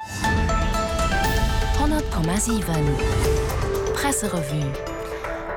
100,7 Presserevue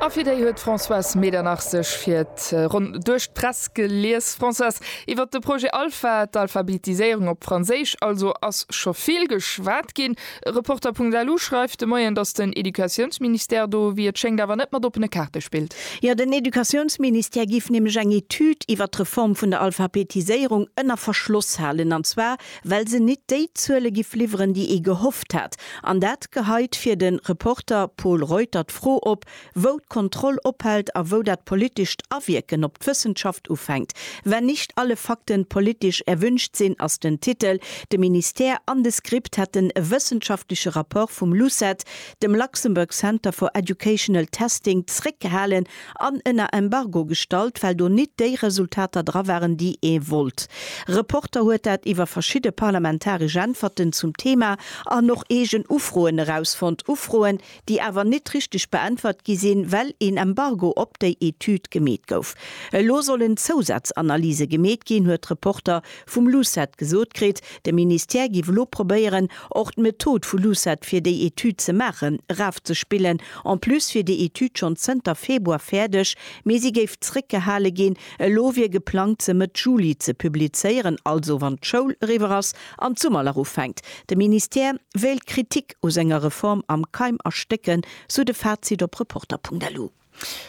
A fir déi huet d'Françoise Medernach sech fir d'Ronn duerch d'Press gelies. Françoise, iwwer de Projet Alpha, d'Alphabetiséierung op Franséisch also, ass scho vill geschwat ginn. Reporter.lu schreift de Moien, datt den Educatiounsministère do, wéi et schéngt, awer net mat oppene Kaarte spillt. Jo, den Educatiounsministère géif nämlech eng Etüd iwwer d'Reform vun der Alphabetiséierung ënner Verschloss halen, an zwar well se nit déi Zuele giff liwweren, déi ee gehofft hat, an dat geheit fir de Reporter Pol Reuter d'Fro op, wou d'Kontroll ophält a wou dat politescht Awierken op d'Wëssenschaft ufänkt. Wenn nicht alle Fakten politisch erwünscht sind ass den Titel. De Ministère an de SCRIPT hätten e wëssenschaftleche Rapport vum LUCET, dem Luxembourg Center for Educational Testing, zréckgehalen, an ënner Embargo gestallt, well do nit déi Resultater dra waren, déi ee wollt. Reporter huet dat iwwer verschidde parlamentaresch Äntwerten zum Thema an och eegen Ufroen erausfonnt, Ufroen, déi awer nit richteg beäntwert gi sinn, well een Embargo op déi Etüd gemeet gouf. Elo sollen Zousazanalyse gemeet ginn, huet Reporter vum LUCET gesot kritt, de Ministère giff elo probéieren, och d'Method vu LUCET fir déi Etüd ze maachen, erafzespillen, en plus wier déi Etüd schonn zënter Februar fäerdeg, mee si géif zréckgehale ginn. Elo wier geplangt, se Mëtt Juli ze publizéieren, also wann d'Schoul eriwwer ass an d'Summerlach ufänkt. De Ministère wéilt d'Kritik u senger Reform am Keim erstécken, sou de Fazit op Reporter.lu.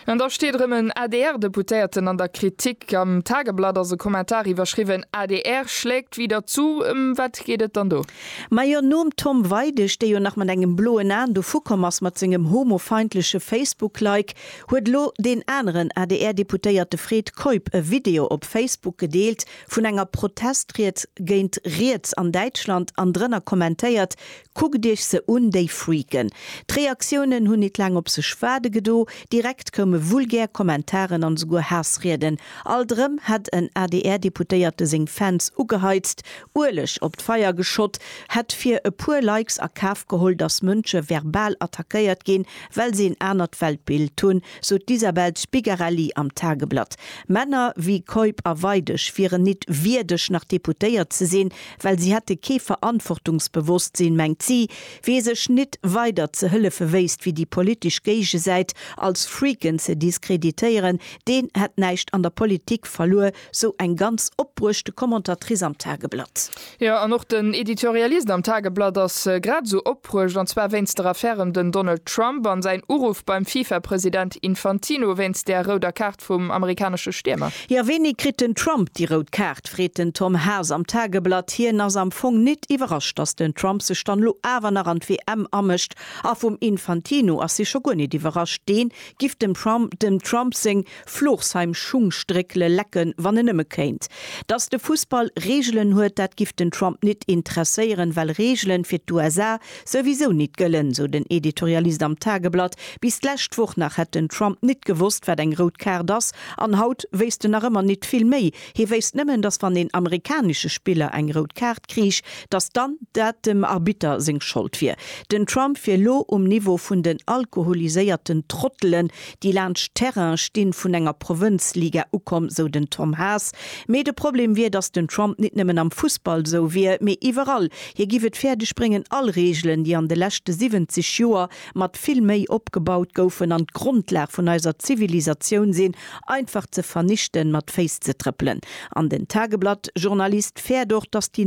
An da steet erëm en ADR-Deputéierten an der Kritik. Am Tageblatt ass e Kommentar iwwerschriwwen, adr schlägt wieder zu. Ëm wat geet et dann do? Majo, nom Tom Weidig, dee jo nach mat engem bloen Aen dovu komm ass mat sengem homofeindleche Facebook-Like, huet elo deen aneren ADR-Deputéierte Fred Keup e Video op Facebook gedeelt vun enger Protestried géint Riets an Däitschland an drënner kommentéiert, Kuckt iech se un, déi Freaken! D'Reaktiounen hunn nit laang op sech waarde gedo, direkt koume vulgär Kommentaren an esouguer Haassrieden. Alt erëm hätt en ADR-Deputéierte seng Fans ugeheizt, Ueleg op d'Feier geschott, hätt fir e puer Likes a Kaf geholl, datt Mënsche verbal attackéiert ginn, well se en anert Weltbild hunn, sot d'Isabel Spigarelli am Tageblatt. Männer wéi Keup a Weidig wieren nit wierdeg nach Deputéiert ze sinn, well si hätte kee Verantwortungsbewosstsinn, mengt si, wee sech nit weider ze hëllefe wéisst wéi déi politesch Géigesäit als Freaken ze diskreditéieren, deen hätt näischt an der Politik verluer, sou eng ganz opbruechte Commentatrice am Tageblatt. Jo, an och den Editorialist am Tageblatt ass grad esou op. bruecht, an zwar wéinst der Affär ëm den Donald Trump an säin Uruff beim FIFA-President Infantino wéinst der rouder Kaart vum amerikanesche Stiermer. Jo, wéini kritt den Trump déi rout Kaart, freet den Tom Haas am Tageblatt. Hien ass am Fong nit iwwerrascht, datt den Trump sech dann elo awer nach an d'WM amëscht. A vum Infantino ass hie scho guer nit iwwerrascht, deen giff dem Trump seng Florsheim Schung stréckele lecken, wann en nëmme kéint. Datt de Fussball Reegelen huet, dat giff den Trump nit interesséieren, well Reegelen fir d'USA souwisou nit gëllen, sou den Editorialist am Tageblatt. Bis d'lescht Woch nach hätt den Trump nit gewosst, wat eng rout Kaart ass, an haut wéisst en nach ëmmer nit vill méi. Hie wéisst nëmmen, datt wann een amerikanesche Spiller eng rout Kaart kriich, datt dann dat dem Arbitter seng Schold wier. Den Trump wier lo um Niveau vun den alkoholiséierten Trottelen, déi laanscht d'Terraine stinn, vun enger Provënzliga ukomm, sou den Tom Haas. Mee de Problem wier, datt den Trump nit nëmmen am Fussball sou wier, mee iwwerall. Hie giff et fäerdeg bréngen, all Reegelen, déi an de leschte 70 Joer mat vill Méi opgebaut goufen an d'Grondlag vun eiser Zivilisatioun sinn, einfach ze vernichten, mat Féiss ze trëppelen. An den Tageblatt-Journalist fäert och, datt déi